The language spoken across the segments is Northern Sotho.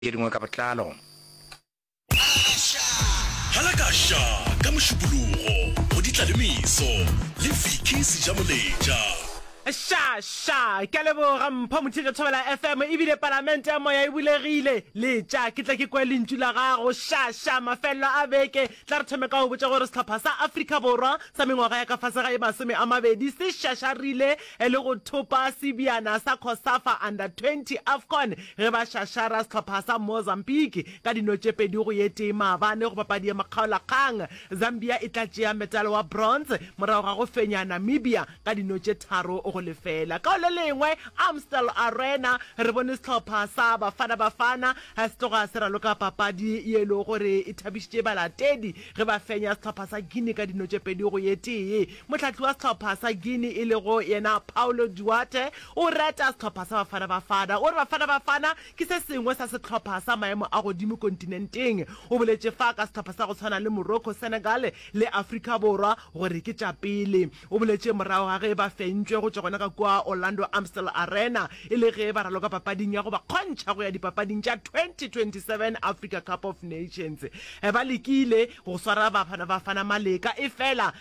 tše dingwe ka botlalo. Halakasha ka Mošupologo go Ditlalemiso le Vicky Sejamoletša. Sha! Sha! Ke a leboga Mpho Mothietša Thobela FM, e bile Palamente ya Moya e bulegile. Letša ke tle ke kwe lentšu la gago. Sha! Sha! Mafelelo a beke, tla re thome ka go botša gore sehlopha sa Afrika Borwa sa mengwaga ya ka fase ga e masome a mabedi se šašarile e le go thopa sebjana sa Cosafa Under 20 Afcon ge ba šašara sehlopha sa Mozambique ka dino tše pedi go ye tee maabane go papadi ya makgaolakgang. Zambia e tla tšea metalo wa bronze morago ga go fenya Namibia ka dino tše tharo go lefela. Ka go le lengwe, Amstel Arena, re bone sehlopha sa Bafana Bafana se tloga se raloka papadi ye e lego gore e thabišitše balatedi ge ba fenya sehlopha sa Guinea ka dino tše pedi go ye tee. Mohlahli wa sehlopha sa Guinea e lego yena Paulo Duarte o reta sehlopha sa Bafana Bafana. O re Bafana Bafana ke se sengwe sa sehlopha sa maemo a godimo kontinenteng. O boletše fa ka sehlopha sa go tshwana le Morocco, Senegal le Afrika Borwa gore ke tša pele. O boletše morago ga ge ba fentšwe go tšwa gona ka kua Orlando Amstel Arena e le ge ba raloka papading ya go ba kgontšha go ya dipapading tša 2027 Africa Cup of Nations. Ba lekile go swara Bafana Bafana maleka efela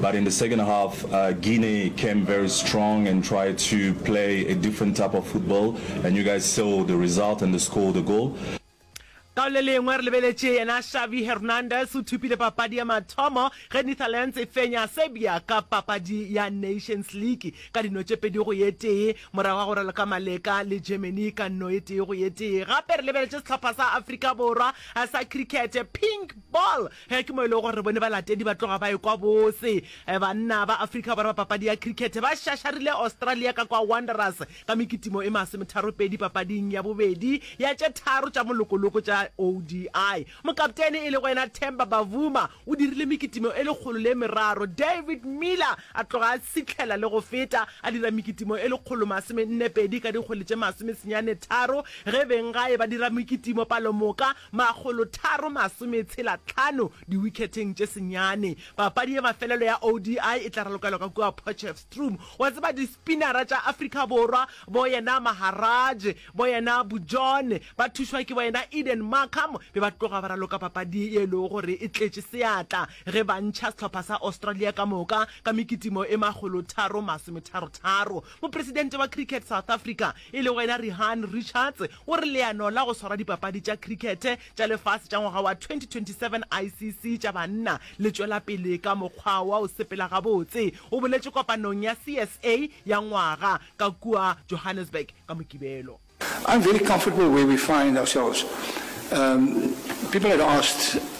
But in the second half, uh, Guinea came very strong and tried to play a different type of football, and you guys saw the result and the score, the goal. Ka le lengwe re lebeletše yena Xavi Hernandez o thupile papadi ya mathomo ge Netherlands e fenya Serbia ka papadi ya Nations League ka dino tše pedi go ye tee morago ga go raloka maleka le Germany ka no e tee go ye tee. Gape re lebeletše sehlopha sa Afrika Borwa sa cricket pink ball Ge ke mo e lego gore re bone balatedi ba tloga ba ekwa botse. Banna ba Afrika Borwa ba papadi ya cricket ba šašarile Australia ka kwa Wanderers ka mekitimo e masometharopedi papading ya bobedi ya tše tharo tša molokoloko tša ODI. Mokaptene e lego yena Temba Bavuma o dirile mekitimo e lekgolo le meraro. David Miller a tloga a tshihlela le go feta a dira mekitimo e lekgolo masomennepedi ka dikgwele tše masomesenyane tharo ge benggae ba dira mekitimo palomoka Makgolotharo masometshela tlhano diwikheteng tše senyane. Papadi ya mafelelo ya ODI e tla ralokelwa ka kua Potchefstroom. Wa tseba dispinara tša Afrika Borwa, bo yena Maharaj, bo yena Bujohn, ba thušwa ke bo yena Eden Markram, be ba tloga ba raloka papadi ye e lego gore e tletše seatla ge ba ntšha sehlopha sa Australia ka moka ka mekitimo e makgolotharo masometharotharo. Mopresidente wa Cricket South Africa e lego yena Rihaan Richards O re leano la go swara dipapadi tša khrikhete tša lefase tša ngwaga wa 2027 ICC tša banna le tšwela pele ka mokgwa wa go sepela gabotse. O boletše kopanong ya CSA ya ngwaga ka kua Johannesburg ka Mokibelo. I'm very comfortable where we find ourselves. Um, people had asked.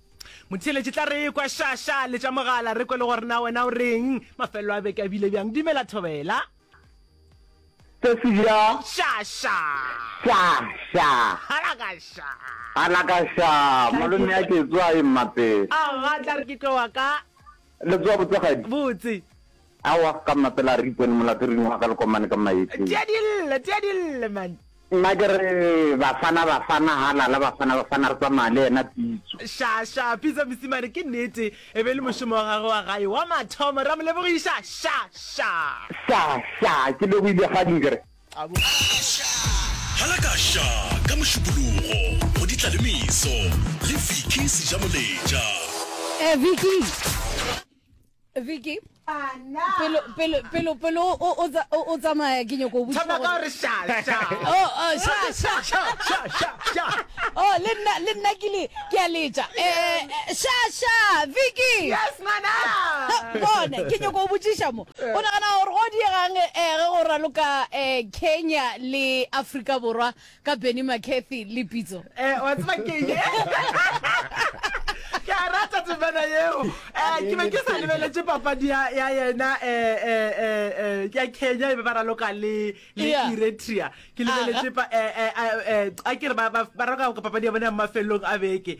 Motheeletše tla re ekwa sha sha le tša mogala re kwe le gore na wena o reng mafelelo a beke a bile bjang dumela thobela se se bja sha sha sha sha hala ka sha hala ka sha malome a ke tswa e mmapele a ga tla re ke tlo wa ka le tswa botsegadi botse Aowa, ka mmapela a re, Ipone molato ring wa ka le komane ka maethleng. Tea dille, tea dille, man. Nna ke re, Bafana, Bafana, halala, Bafana, Bafana, re tsamaya le yena Pitso. Sha, sha, Pitso mosimane, ke nnete, e be e le mošomo wa gagwe wa gae wa mathomo, re a mo lebogiša, sha, sha. Sha, sha, ke lebohile Kgading, ke re. Sha, halaka, sha, ka Mošupologo, go Ditlalemeso, le Vicky Sejamoletša. Eh, Vicky! Vicky pelo pelo pelo pelo o o tsa- o o tsamaya ke nyoko botsa Tshwana ka gore- gore sha, sha. Oh, oh, sha, sha. Sha, sha, sha, sha. Oh, le nna le nna ke le ke a letša Eh, eh, sha sha Vicky Yes, ngwana. bone ke nyoko o botšiša mo o nagana gore go diegang eh, ge go raloka eh, kenya le afrika borwa ka benny mccarthy le pitso Eh, wa tseba ke eng? ke a rata temana yeo um ke be ke sa lebeletse papadi ya ya yena um ya kenya e be ba raloka le le Yeah. eritrea ke lebeletse pa- eh, eh, eh, eh, a ke re ba- ba ba raloka ka papadi ya bona ya mafelelong a beke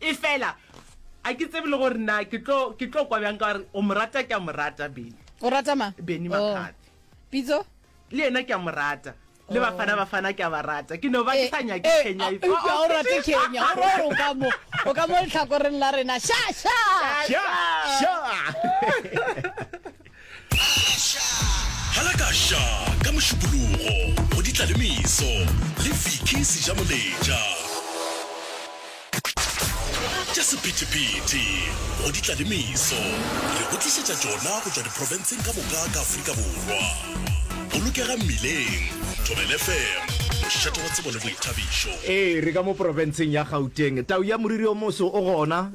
Efela, a ke tsebe le gore na ke tlo, ke tlo kwa bjang ka gore o mo rata, ke a mo rata Benny. O rata ma? Benny Oh. Makgathi. Pitso? Le yena ke a mo rata. Le Bafana Bafana ke a ba rata. Ke no ba ke sa nyake Eh, Kenya. eh, It's- eupša o rate Kenya. O re o ka mo, o ka mo lehlakoreng la rena. Sha, sha! Sha, sha. Halakasha ka Mošupologo go Ditlalemeso le Vicky Sejamoletša. Tša Sephethephethe go Ditlalemeso re go tlišetša tšona go tšwa diprofenseng ka moka ka Afrika Borwa. Bolokega Mmileng, Thobela FM, Mošate wa Tsebo le Boithabišo. Ee, re ka mo profenseng ya Gauteng. Tau ya moriri o moso o gona,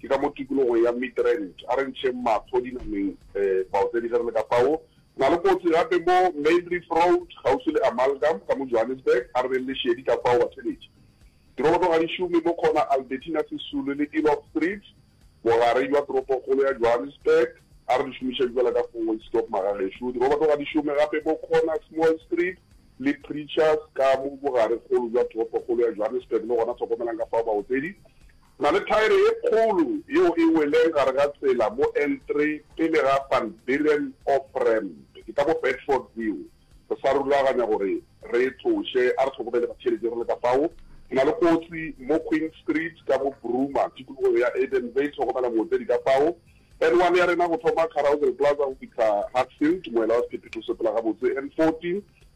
Ke ka mo tikologong ya Midrand. A re ntšheng mahlo dinameng fao tse di ge re le ka fao. Re na le kotsi gape mo Maindrift Road, kgauswi le Amalgam ka mo Johannesburg. A re beng le šedi ka fao, batheletši. Diroboto ga di šome mo khona Albertina Sisulu le Eloff Street, bogare bja toropokgolo ya Johannesburg. A re di šomišeng fela ka four-way stop, magagešo. Diroboto ga di šome gape mo khona Small Street le Preachers ka mo bogarekgolo bja toropokgolo ya Johannesburg. Le gona hlokomelang ka fao, baotsedi. Na le thaere ye kgolo yeo e weleng gare ga tsela mo N3 pele ga Van Buren off-ramp. Ke ka mo Bedford View. Re sa rulaganya gore re e tloše. A re hlokomele batšheletši re le ka fao. Re na le kotsi mo Queen Street ka mo Broomer, tikologong ya Edenvale. Hlokomela mootledi ka fao. N1 ya rena go thoma Carousel Plaza go fihla Hatfield, moela wa sephephetho se pela gabotse. N14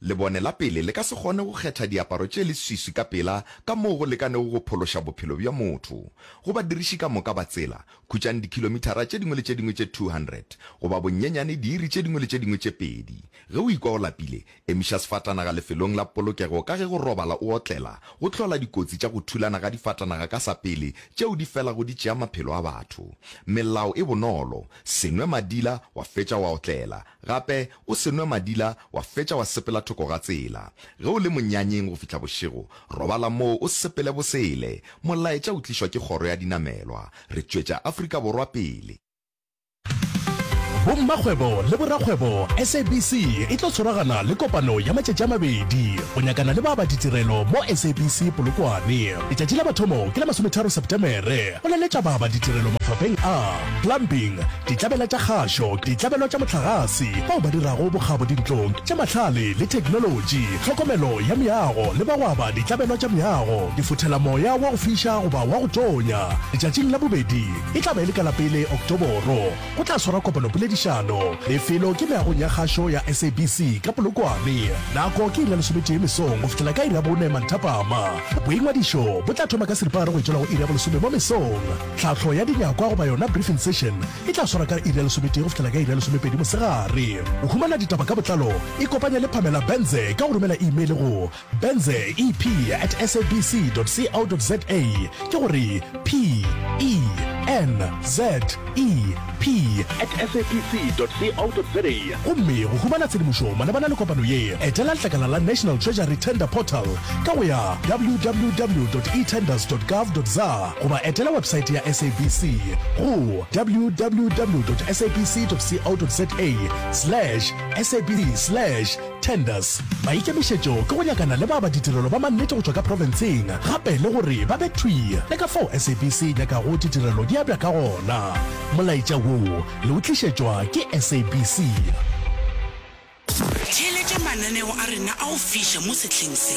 Lebone la pele le ka se kgone go kgetha diaparo tše leswiswi ka pela ka moo go lekanego go phološa bophelo bja motho. Go badiriši ka moka ba tsela, khutšang dikhilomithara tše dingwe le tše dingwe tše 200, goba bonyenyane diiri tše dingwe le tše dingwe tše pedi. Ge o ikwa o lapile, emiša sefatanaga lefelong la polokego ka ge go robala o otlela go hlola dikotsi tša go thulana ga difatanaga ka sa pele tšeo di felago di tšea maphelo a batho. Melao e bonolo, se nwe madila wa fetša wa otlela. Gape o se nwe madila wa fetša wa sepela thoko ga tsela. Ge o le monyanyeng go fihla bošego, robala moo o sepele bosele. Molaetša o tlišwa ke kgoro ya dinamelwa. Re tšwetša Afrika Borwa pele. Bommakgwebo le borakgwebo SABC e tlo tshwaragana le kopano ya matšatši a mabedi go nyakana le ba ba ditirelo mo SABC Polokwane. Letšatši la mathomo ke la masometharo Sepetemere. Go laletša baba ditirelo mafapheng a, plumbing, ditlabela tša kgašo, ditlabelo tša mohlagase, bao ba dirago bokgabo dintlong, tša mahlale le theknolotši, tlhokomelo ya meago le bagwaba ditlabelo tša meago, difothelamoya wa go fiša goba wa go tonya. Letšatšing la bobedi e tla ba e le ka la pele Oktoboro. Go tla swarwa kopanopoledišano. Lefelo ke meagong ya kgašo ya SABC ka Polokwane. Nako ke iri ya lesometee mesong go fihlela ka iri ya bone manthapama. Boingwadišo bo tla thoma ka seripagare go e tšwela go iri ya bolesome mo mesong. Tlhahlo ya dinyakwa goba yona briefing session e tla swarwa ka iri ya lesometee go fihlela ka iri ya lesomepedi mosegare. Go humana ditaba ka botlalo ikopanye le Pamela Benze ka go romela imeile go. Benze EP at sabc.co.za ke go re P E N Z E P at sabc.co.za gomme go humana tshedimošo malebana le kopano ye etela letlakala la National Treasury Tender Portal ka go ya www.etenders.gov.za goba etela websaete ya sabc go www.sabc.co.za slash sabc slash Tenders, Maikemišetšo ke go nyakana le ba ba ditirelo ba mannete go tšwa ka profenseng gape le gore ba be thwi le ka fao SABC e nyakago ditirelo di abja ka gona. Molaetša wo le o tlišetšwa ke SABC. Theeletša mananeo a rena a go fiša mo sehleng se.